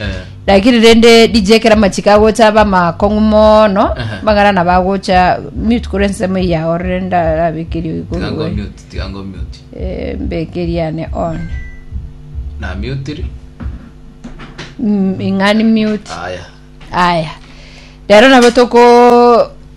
Eh. lakini rende dj ekero amachiko agocha aba amakong'u mono Aha. magara nabo agocha mute kore ensemo eye yaorire ndarabekerie oyo Tiga ngo korigwe mute, tiga ngo mute. Eh, mbekerie ane on Na mute ri. Mm, ing'ani mute Aya. aya rero nabo toko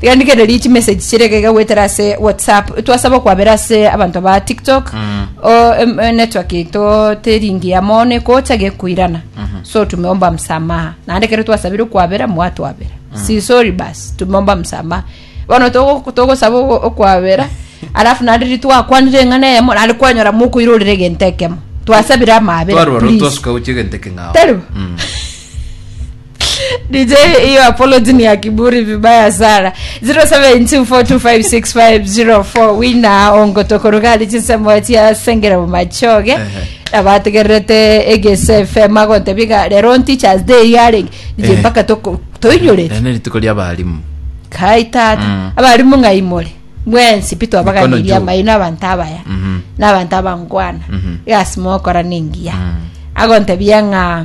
Riandigererie chi message chire gaiga gwetera ase whatsapp twasaba okwabera ase abanto ba tiktok o em, eh, network yaito teringi ya mono ekocha gekoirana so tumeomba msamaha naende kero twasabire okwabera mwatwabera si sorry basi tumeomba msamaha bono togo- togosaba ogo- okwabera alafu naende riria twakwanire eng'ana eyemo naende kwanyora mokoirorera egento ekemo twasabire amabera twarwara please. twasuka gochia egento ekeng'ao Taribo? Mm. DJ hiyo apology ni ya kiburi vibaya sana 0724256504 wina ongotokorugari chinsemo chia sengera mumachoge abategererete egese fm agontebi ga rero on teachers day yare DJ Eh. mpaka toko- toinyore Rero ni rituko ria abarimu kai tata Mm. abarimu ng'aimore mwensi pi Mikono twabaganiria juu. amaino abanto abaya Mhm. n'abanto abangwana Mhm. egasi mogokora nengiya Mm. agontebia ng'a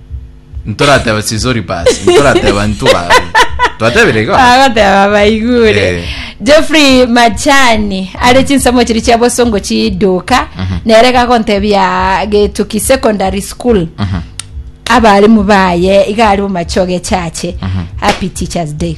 ntorateba sisori basi ntorateba ntugaru twatebire igo agoteba baigure Eh. jeffrey machani are chinsemo chiri chia bosongo chiduka nere gagontebia getuki secondary school abarimu baye iga ari bomachoge chache happy teachers day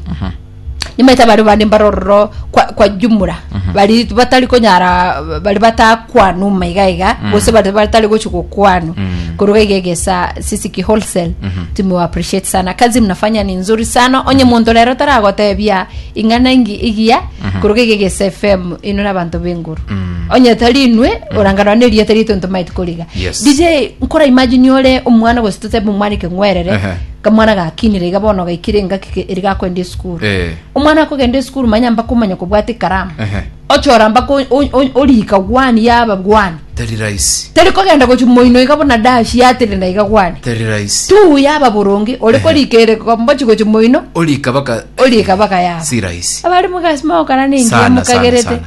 Nimaete abare bande mbare ororo kwa, kwa jumura bari batari konyara bari batakwanu uma iga iga gose bari batari gochi gokwanu koruga iga egesa sisi ki wholesale tumewa appreciate sana kazi mnafanya ni nzuri sana onye muntu rero taragotebia ing'ana ingi igiya koruga iga egesa fm ino na abanto b'enguru onye tari inwe oranganwa na erieta riaito ntomaeti koriga Yes. dj nkora imagine ore omwana gose totebe omwana ekeng'werere Ehe. Kamwana gakinire iga bono gaikire engaki ke- eri gakoenda esukuru Eh. omwana akogenda esukuru manya mpaka omanye kobwata ekaramu Ehe. ochora mpaka o- o- o- orika gwani yaba gwani Teri rahisi. teri kogenda gochi moino iga buna dashi yatirina iga gwani Teri rahisi. tu yaba boronge ore Ehe. korika ere kombochi gochi moino Orika baka orika baka yaba si rahisi. abari mugasi maokana ningiya Sana, sana, mukagerete sana.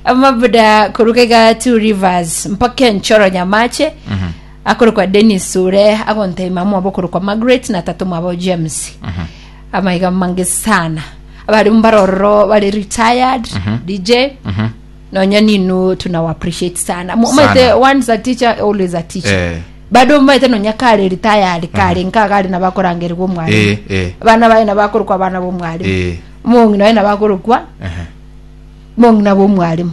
amabuda koruga iga two rivers mpaka enchoro nyamache akorokwa Dennis ore agontebia mamwabo okorokwa Margaret na tata omwabo James amaiga mange sana abare mbare ororo bare retired DJ nonya ninu tuna appreciate sana Mo- Sana. maete once a teacher always a teacher Eh. bado maete nonya kare retired kare nka kare nabakorangerwa omwalimu Eh, eh. abana baye nabakorokwa abana bomwalimu Eh. mong'ina baye nabakorokwa Ehe. mong'ina bomwalimu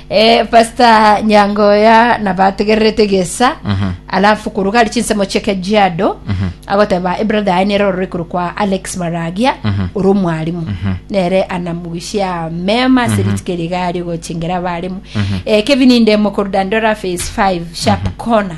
Eh, pastor nyangoya nabategererete gesa alafu koruga ari chinsemo chia kajiado agoteba ebrother aye nere orore koru kwa alex maragia ore omwarimu nere anamugushia mema ase rituko eriga ari ogochingera abarimu Eh, kevin ndemo koru dandora phase 5 sharp corner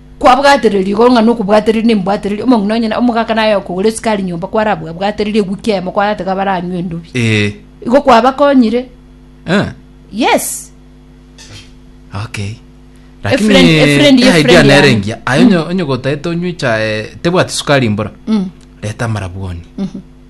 Kwabwaterire rigoro ng'a nokobwatereri nembwatereri, omong'ina onye omogaka naye okogora esukari nyomba kwarabwabwatereri ewiki emo kwaratega baranywe endubi. Eh. Igo kwabakonyire. Eh. Yes. Okay. Lakini friend- a friend ye eh, friend idea nere yane. engiya. Aye onye- onye gotaete onywe echae tebwati sukari mbora. Mm. Reta amarabwoni.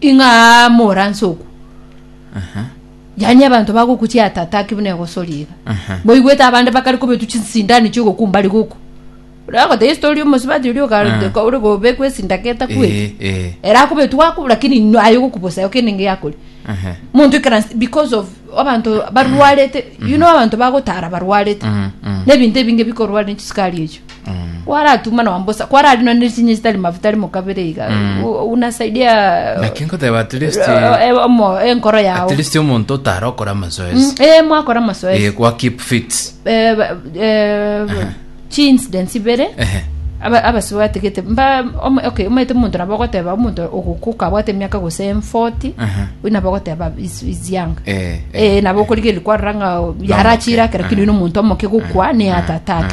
Ing'a aa moranse okwo. Yaani abanto bagokuchia atataki buna egosori iga. Boigwete abande bakare kobetwa chinsindani chiogokumba rigoko. Ore agoteba Yesu tori omosibati oria okarete ko ore kobekwa esinda keta kwete. Era akobetwa akobwa lakini no aye gokubosa yo kende ngeyakori. Monto ekera because of abanto barwarete. You know abanto bagotara barwarete. Nebinto ebinge bikorware chisukari echo. kwaratuma nonya mbosa kwararina ne chinye chitari mafuta rimo kabere iga u- unasaidia lakini nkoteba at least eh, eh, omo- enkoro yao at least omonto otara okora Mm, amazoezi eh, mwakora masoesi Eh, kwa keep fit Eh, ba- eh, chi incidents ibere Ehe. aba- abasi batigete mba om- okay omaete omonto nabo ogoteba omonto ogokuka abwate emiaka gose 40 Aha. oyo nabo ogoteba is, is young Eh, eh, nabo okorigeri kwarora ng'a yarachira ake lakini oino omonto omoke gokwa ne heart attack